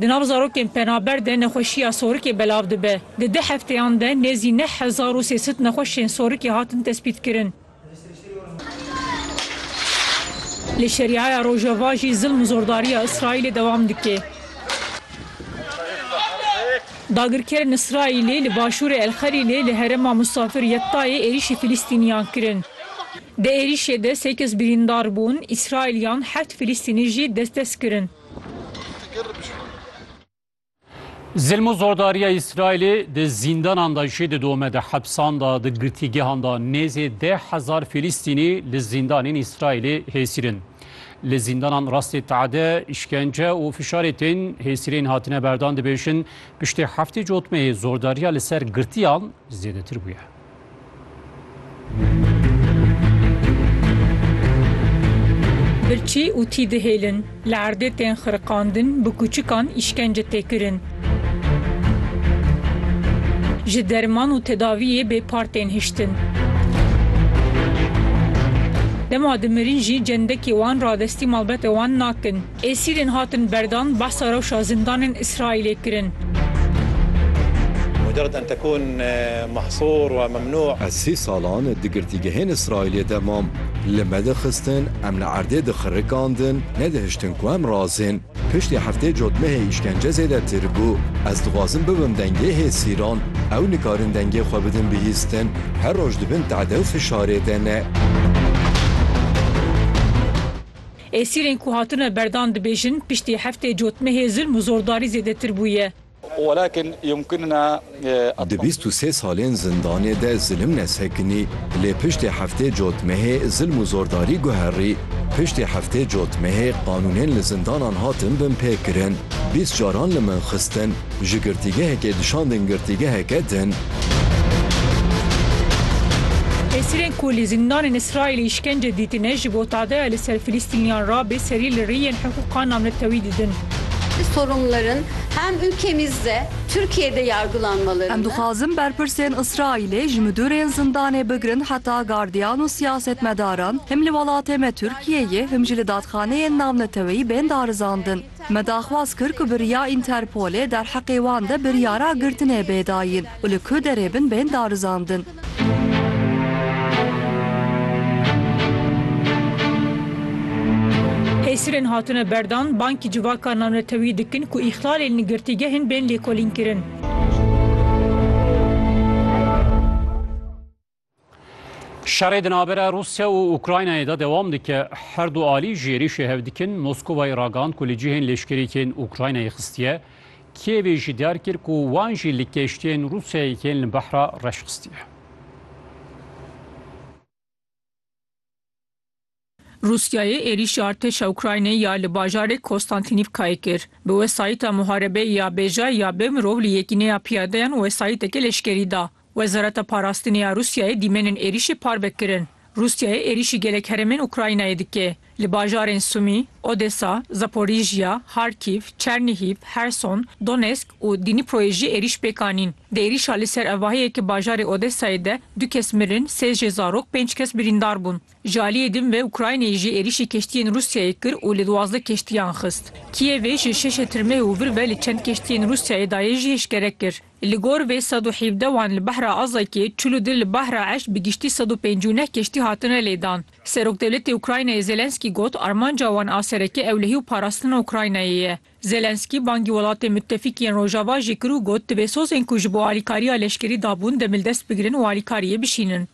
Di nav zarokên penaber de nexweşiya sorikê belav dibe. Di du hefteyan de nêzî neh hezar û sê sed nexweşên sorikê hatin tespîtkirin. Li Şeriaya Rojava jî zilm û zordariya Îsraîlê dewam dike. Dagirkerên Îsraîlê li başûrê El Xelîlê li herêma Musafir Yettayê êrîşî Filîstîniyan kirin. Di êrîşê de sê kes birîndar bûn, Îsraîliyan heft Filîstînî jî dest dest kirin. Zilm û zordariya Îsraîlê di zîndanan de jî didome, di hepsan de, di girtîgehan de nêzê deh hezar Filîstînî li zîndanên Îsraîlê hêsîr in. Li zîndanan rastê teade, îşkence û fişarê tên hêsîrên hatine berdan dibêjin, piştî heftê cotmeyê zordariya li ser girtiyan zêdetir bûye. Birçî û tî dihêlin, li erdê tên xiriqandin, bi kûçikan îşkence tê kirin. Ji derman û tedaviyê bêpar tên hiştin. Dema dimirîn jî cendekê wan radestî malbete wan nakin. Esîrên hatin berdan behsa rewşa zindanên Îsraîlê kirin. Ez sî salan di girtîgehên Îsraîlê de mam. Li me dixistin, em li erdê dixirikandin, nedihiştin ku em razên. Piştî heftê cotmehê îşkence zêdetir bû. Ez dixwazim bibim dengê hêsîran. Ew nikarin dengê xwe bidin bihîstin. Her roj di bin tade û fişarê de ne. Esîrên ku hatine berdan dibêjin piştî heftê cotmehê zulm û zordarî zêdetir bûye. Di bîst û sê salên zindanê de zilim nesekinî, lê piştê heftê cotmehê zilm û zordarî guherî. Piştê heftê cotmehê qanûnên li zindanan hatin binpêkirin, bîst caran li min xistin. Ji girtîgehekê dişandin girtîgeheke din. Esîrên ku li zindanên Îsraîlê îşkence dîtine ji bo tadeya li ser Filîstîniyan re bê serî li riyên hiqûqa navnetewî didin. Sorumluların hem ülkemizde, Türkiye'de yargılanmalarını, Em dixwazin berpirsên Îsraîlê ji midûrên zindanê bigirin heta gardiyan û siyasetmedaran him li welatê me Tirkiyeyê him jî li dadxaneyên navneteweyî bên darizandin. Me daxwaz kir ku bi riya Interpolê derheqê wan de biryara girtinê bê dayîn û li ku derê bin bên darizandin. Hêsirên hatine berdan, bankî civaka navnetewî dikin ku îxlalên li girtîgehên bên lêkolînkirin. Şerê di navbera Rûsya û Ukraynayê de dewam dike. Her du alî ji êrîşê hev dikin. Moskovayê ragand ku li cihên lêşkerîkên Ukraynayê xistiye. Kîevê jî diyar kir ku wan jî li keştiyên Rûsyayê yên li behra reş xistiye. Rûsyayê êrîşa artêşa Ukraynayê ya li bajarê Kostantinîvkayê kir. Bi wesayîta muharebeyê ya bêjay ya bê mirov li yekîneya piyadeyan wesayîteke leşkerî da. Wezareta Parastinê ya Rûsyayê dîmenên êrîşê parve kirin. Rûsyayê êrîşî gelek herêmên Ukraynayê dike. Li bajarên Sumî, Odesa, Zaporijya, Harkîv, Çernihîv, Herson, Donesk û Dîniproyê jî êrîş pêk anîn. Di êrîşa li ser evahiyeke bajarê Odesayê de du kes mirin, sê jê zarok, pênc kes birîndar bûn. Ji aliyê din ve Ukraynayê jî êrîşî keştiyên Rûsyayê kir û li duwazdeh keştiyan xist. Kîevê ji şeşê tirmeh û vir ve li çend keştiyên Rûsyayê dayê jî eşkere kir. Li gor vê sed û hevdeh wan li behra Azakê, çil û du li bahra eşt bi giştî sed û pêncî û neh keştî hatine lêdan. Serokdewletê Ukraynayê Zelensky got armanca wan a sereke ewlehî û parastina Ukraynayê ye. Zelensky bangî welatên mutefîk yên Rojava jî kir û got divê sozên ku ji bo alîkariya leşkerî dabûn demildest bigirin û alîkariyê bişînin.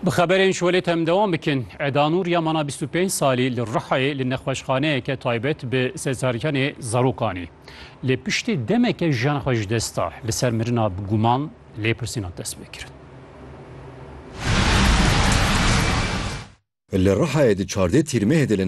Bi xeberên ji welêt em dewam bikin. Eda Nur ya mana 25 salî li Rihayê li nexweşxaneyeke taybet bi sezaryanê zarokanî. Lê piştî demeke jiyana xwe ji dest da. Li ser mirina bi guman lêpirsînan dest pê kirin. Li Rihayê di çardeh tîrmehê de li